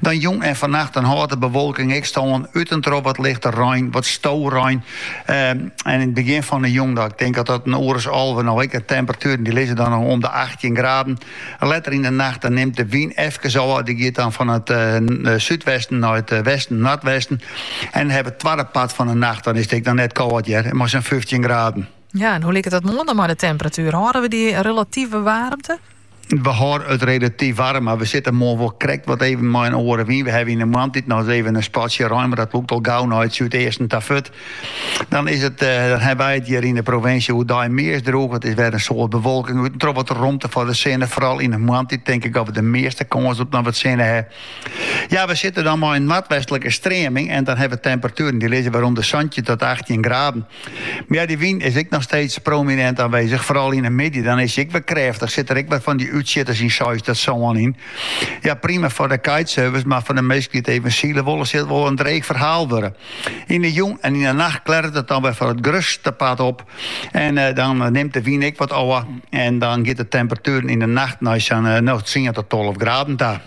Dan jûn en vannacht dan hâldt de bewolking ek stân, út en troch wat lichte rein, wat storein. Ehm, en yn it begjin fan de jûn, ik tink dat dat in oer as alve noch ek, de temperatueren die lizze dan om de 18 graden. Letter yn de nacht dan nimt de wyn efkes ôf, die giet dan fan it eh, súdwesten nei it eh, westen, noordwesten. En yn it twadde part fan de nacht, dan is it dan net kâld hear, mei sa'n 15 graden. Ja, en hoe liket dat moarn dan mei de temperatuur? Hâlde we dy relative waarmte? We hâlde it relatyf waarm, mar we sitte moarn wol krekt wat even mei in oare wyn. We hawwe yn de moantiid noch even in spatsje rein, mar dat lûkt al gau nei it súdeasten ta fuort. Dan is it, eh, dan hawwe wy it hjir yn de provinsje oerdei meast drûch. It is wer in soad bewolking út en troch wat romte foar de sinne. Foaral yn de moantiid tink ik dat we de measte kâns op noch wat sinne hawwe. Ja, we sitte dan mei in noardwestlike streaming en dan hawwe we temperatueren dy lizze wer om de santjin oant achttjin graden. Mja, dy wyn is ek noch steeds prominint aanwezich, foaral yn 'e middei. Dan is se ek wer krêftich, sit der ek wer fan dy útsjitters seis oant sân yn. Ja, prima foar de kitesurfers, mar foar de minsken dy't even sile wolle, sil it wol in dreech ferhaal wurde. Yn 'e jûn en yn 'e nacht klearret it dan wer foar it grutste part op en dan nimt de wyn ek wat ôf en dan giet de temperatuer yn 'e nacht nei sa'n tsien ta tolve graden ta.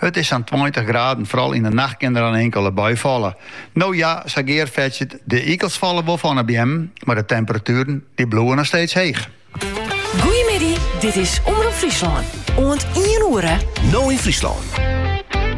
It is sa'n tweintich graden, fral yn 'e nacht kin der in inkele bui falle. No ja, sa giet it fierder, de ikels falle wol fan 'e beammen, mar de temperatueren dy bliuwe noch steeds heech. Goeiemiddei, dit is Omrop Fryslân, oant ien oere. No yn Fryslân.